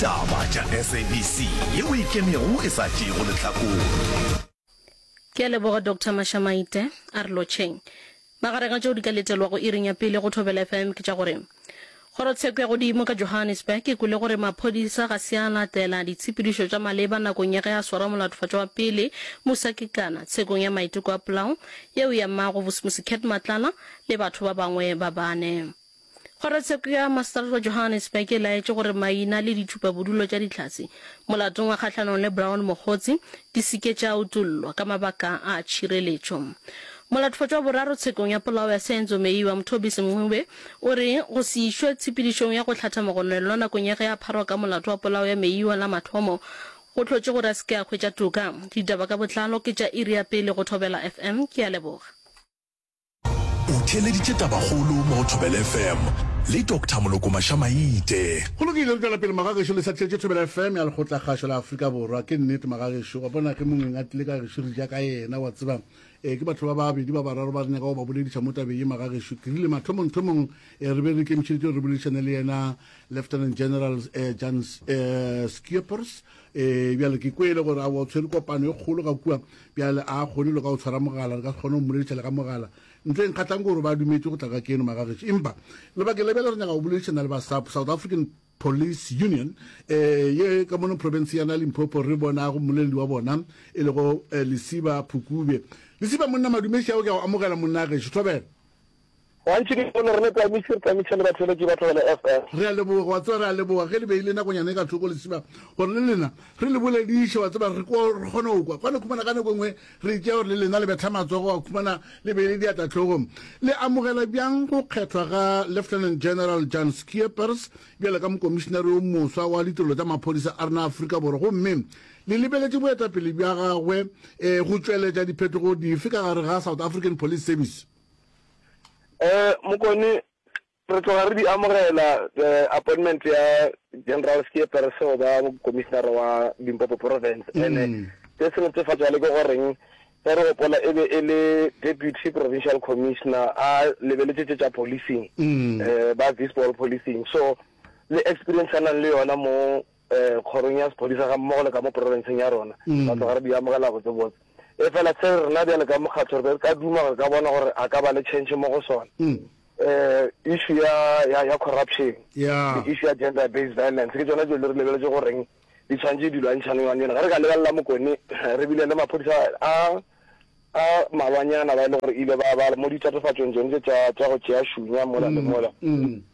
Taba tša SABC ye o e kenego e sa tšeego lehlakore. Ke a leboga Doctor Mashamaite. A re lotšheng. Magareng a tšeo di ka letelwago iring ya pele go Thobela FM ke tša gore, Kgorotsheko ya Godimo ka Johannesburg e kwele gore maphodisa ga se a latela ditshepedišo tša maleba nakong ya ge a swara molatofatšwa wa pele, Musa Kekana, tshekong ya maiteko a polao yeo ya Mmago Vusmusi Cat Matlala le batho ba bangwe ba bane. Kgorotsheko ya Maseterata Johannesburg e laetše gore maina le ditšhupabodulo tša ditlhase molatong wa kgahlanong le Brown Mokgotsi di se ke tša utollwa ka mabaka a tšhireletšo. Molatofotšo wa boraro tshekong ya polao ya Senzo Meyiwa, Mthobisi Mncube, o re go se išwe tshepedišong ya go hlatha mogononelwa nakong ya ge a pharwa ka molato wa polao ya Meyiwa la mathomo go hlotše gore a se ke a hwetša toka. Ditaba ka botlalo ke tša iri ya pele go Thobela FM. Ke a leboga. O theeleditše tabakgolo mo go Thobela FM le Doctor Moloko Mašamaite. Go lokile re tšwela pele magagešo le sa thetše Thobela FM ya lekgotlakgašo la Afrika Borwa. Ke nnete magagešo wa bona ge mongweng a tlile ka gešo re ja ka yena wa tseba e ke batho ba ba bedi ba bararo ba re nyaka go ba bolediša mo tabeng ye magagešo ke rile mathomong thomong e re be re ikemišeditše re boledišane le yena Lieutenant General e Jan e Schippers e bjale ke kwele gore a wa tshwere kopano e kgolo ga kua Bjale, a a kgone le ka go tshwara mogala, re ka se kgone go mmolediša le ka mogala, ntle e nkgatlang gore ba dumetše go tla ka keno, magagešo. Empa, lebakeng la bjale re nyaka go boledišana le ba SAPU, South African Police Union, e, ye ka mono profenseng ya Limpopo, re bonago mmoleledi wa bona, e lego, e, Lesiba Phukubye. Lesiba, monna Madumeši, ao ke a go amogela, monna gešo. Thobela. Gantši ke bone rena Tamiši re tamiša le batheeletši ba Thobela FM. Re a leboga, wa tseba, re a leboga ge le beile nakonyana e ka thoko lesibana gore le lena re le bolediše, wa tseba, re kwa, re kgone go kwa. Kwane khumana ka nako e nngwe re itšea gore le lena le betha matsogo, wa khumana, le beile diatla hlogong. Le amogela bjang go kgethwa ga Lieutenant General Jan Scheepers bjalo ka Mokomišinare yo moswa wa Ditirelo tša Maphodisa a rena a Afrika Borwa, gomme le lebeletše boetapele bja gagwe go tšweletša diphetogo dife ka gare ga South African Police Service? Um mokone re tloga re di amogela appointment ya general ke pereso ba commissioner wa limpopo province mm. ene se se netefatsa le ke goreng ge re gopola e be e le deputy provincial commissioner a lebeletse tse tša policing um ba visball policing so le experience a nang le yona mo kgorong ya sephodisa ga mmogo le ka mo porofenseng ya rona, ra tloga re di amogela botsebotse. Efela se rena bjale ka mokgatho re be re ka duma gore re ka bona gore a ka ba le tšhentšhe mo go sona. Um issue ya ya ya corruption yeah. le issue ya gender based violence ke tsona dilo re lebeletse go reng di tshwanetse di lwantšhane yone yone ga re ka lebelela mokone re bile le maphodisa a a malwanyana ba e le gore ile ba ba mo ditatofatsong tsone tse tsa tsa go tšea shunya mola le mm, mola mm.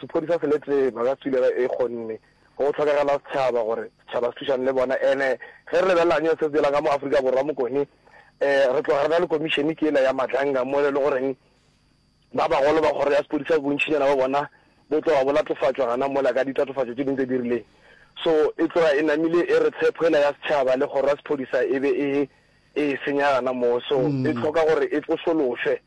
Sephodisa se le tee ba ka tswilega ee gonne go tlhokagala setšhaba gore setšhaba se thušane le bona ene ge re lebelela nyo se se dirang ka mo Afrika Borwa mokone ee re tloga re na le komišene ke yela ya Matlanga mo e le goreng ba bagolo ba kgoro ya sephodisa bontšhinyana ba bona bo tloga bo latofatšwa gana mola ka ditatofatšo tše ding tse di rileng so e tloga e namile e re tshepo yela ya setšhaba le kgoro ya sephodisa e be e e senya gana moo so e tlhoka gore e tsosološwe.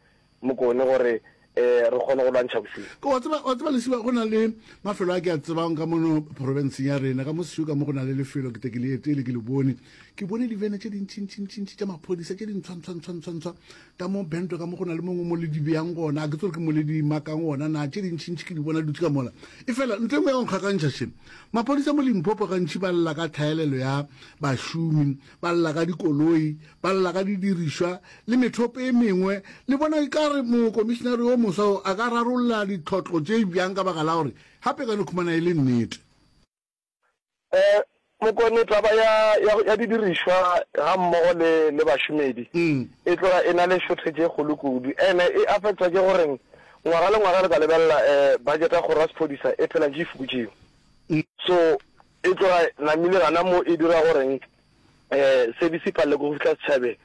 Mokone gore re kgone go lwantšha bosenyi. Wa tseba, wa tseba Lesiba, go na le mafelo a ke a tsebang ka mono porofenseng ya rena, ka mo Siuka mo go na le lefelo, ke te ke le etele, ke le bone. Ke bone divene tše dintšintšintšintši tša maphodisa tše dintshwantswantswantswantswa ka mo Bento, ka mo go na le mongwe mo le di beyang gona, a ke tsore ke mo le di makang gona na, tše dintšintši ke di bona dutse ka mola. Efela ntho e nngwe ya go nkgakantšha še, maphodisa mo Limpopo gantši ba lla ka tlhaelelo ya bašomi, ba lla ka dikoloi, ba lla ka didirišwa le methopo e mengwe, le bona ekare mokomišinare yo moswa o a ka rarolla ditlhotlo tše bjang ka baka la gore gape e ka no khumana e le nnete. E, mokone, taba ya, ya, ya didirišwa ga mmogo le, le bašomedi e tloga e na le shortage e kgolo kudu. Ene e affectwa ke gore ngwaga le ngwaga le ka lebelela e, budget ya kgoro ya sephodisa e phela ntše e fokotšiwa. So, E tloga namile gana mo e dira goreng e se di se palele ko go fihla setšhabeng.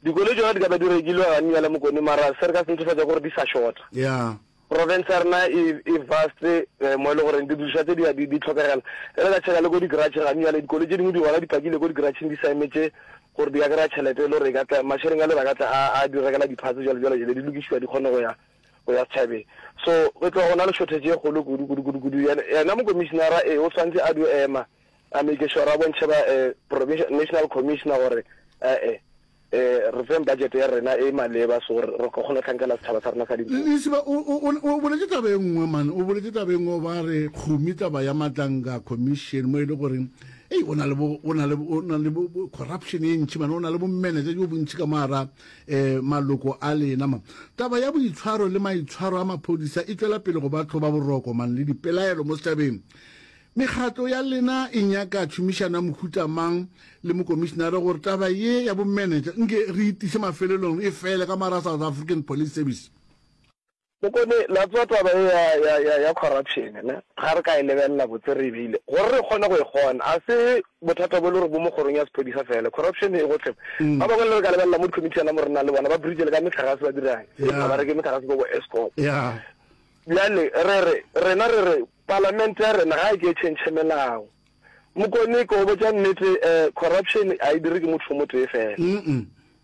Dikoloi tšona di ka ba di rekilwe ga Nnya le Mokone mara se re ka se netefatsa gore di sa shota. Yeah. Province ya rena e e vast e mo e le goreng didiriswa tse di ya di di tlhokagela. E re ka tšheka le ko di garage ga Nnya le dikoloi tše dingwe di gona di pakile ko di garage-ng di sa emetše gore di ka kry-a tšhelete e le gore e ka tla mašeleng a le ba ka tla a a di rekela di parts jalo jalo jalo di lokišiwa di kgone go ya o ya setšhabeng so go tloga go na le shortage e kgolo kudu kudu kudu kudu yena mokomišenara e o swantse a dio ema a make sure a bontšhe ba eh, provincial national commissioner gore ee eh, eh, re feng budget ya rena e maleba so re ka kgona tlhankela setšhaba sa rena sa di lesiba o boletse taba e nngwe mane o boletse taba e nngwe ba re kgomi taba ya matlanga commission mo e le goreng ei o na le corruption e ntšhi mane o na le bomanager jo bontšhi ka mara E, maloko a lena. Ma, taba ya boitshwaro le maitshwaro a maphodisa e tšwela pele go ba tlhoba boroko, man, le dipelaelo mo setšhabeng. Mekgatlo ya lena e nyaka tšhomišano ya mohuta mang le mokomišenare gore taba ye ya bomenetša nke re e tise mafelelong e fele ka morago South African Police Service? Bokone la tswa taba e ya ya ya ya corruption ne ga re ka e lebelela botse re e beile gore re kgone go e kgona a se bothata bo le gore bo mo kgorong ya sepodisa fela corruption e gotlhe mm. ba bangwe le re ka lebelela mo committee yana mo rena le bona ba bridge le ka metlhagase ba dirang yeah. ba reke metlhagase ko bo escom yeah. bjale re re rena re re parlament ya rena ga e ke e change melao mokone ko botsa nnete eh, corruption a e dire ke motho mo tee fela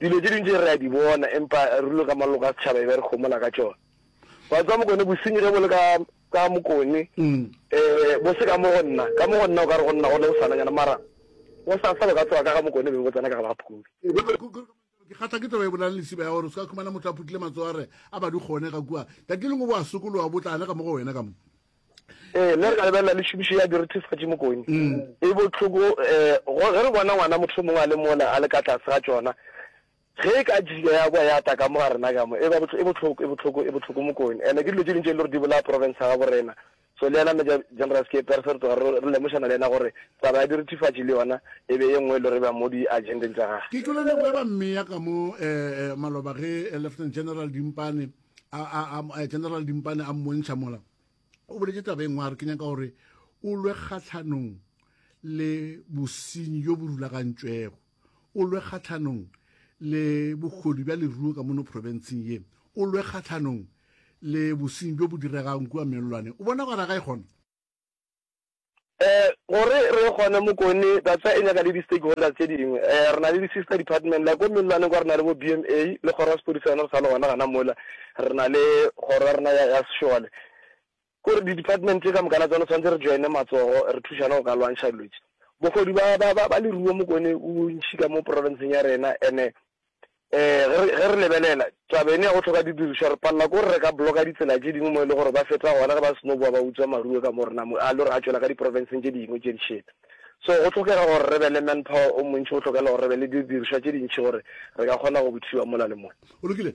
Dilo tše dintši re a di bona, empa ruri ka maloko a setšhaba e be re homola ka tšona. Wa tseba mokone, bosenyi ge bo le ka, ka mokone, um bo se ka mo go nna, ka mo go nna o ka re go nna gona go sananyana, mara go sa sa bo ka tsoga ka ga mokone be bo tsena ka ga baphuli. Ke kgatla ke taba e bolang lesiba ya gore o se ka khumana motho a phutile matsogo a re a ba di kgone ga kua, tatile ngo bo a sokologa bo tla anega mo go wena ka mo. Ee, mme re ka lebelela le tšhomišo ya direthefatši mokone. E bohloko um ge re bona ngwana motho mongwe a le mola a le ka tlase ga tšona, ge e ka jika ya boa ya tla ka mo ga rena ka mo, e ba e bohloko, e bohloko, e bohloko mokone. And-e ke dilo tše ding tše e le gore di bolaya province ya gabo rena. So le yena Major General Skepe re se re tloga re lemošana le yena gore taba ya direthefatši le yona e be ye nngwe e le gore e ba mo di-agendeng tsa gage. Ke tlole leboe ba mmea ka mo um maloba ge Lieutenant General Dimpane general dimpane a mmontšha mola o boletse taba e nngwe a re ke nyaka gore o lwe kgatlhanong le bosenyi yo bo rulagantšwego o lwe kgatlhanong le bogodu bja leruo ka mono provinceng ye o lwe kgatlhanong le bosenyi bjo bo diregang kua mellwane o bona gore ga e kgona Gore re ye gona Mokone, Datswa e nyaka le di-stakeholders tše dingwe. Re na le di-sister department, like ko Mellwaneng kwa re na le bo BMA le kgoro ya sepodisa yona re sa le gona gona mola, re na le kgoro ya rena ya sešole. Ke gore di-department tše ka moka la tsona tshwanetse re join-e matsogo, re thušane go ka lwantšha dilo tše. Bogodu ba leruo Mokone bo bontši ka mo province-ng ya rena and-e Ee, ge re lebelela taba eno ya go hloka didirišwa, re palela ke gore re ka bloka ditsela tše dingwe mo e lego gore ba feta gona ge ba seno boa ba utswa maruo ka mo re namu a lo re a tšwela ka diprofenseng tše dingwe tše dišele. So go hlokega gore re be le manpower o montši, go hlokela gore re be le didirišwa tše dintši gore re ka kgona go buthiwa mola le mola. O lokile.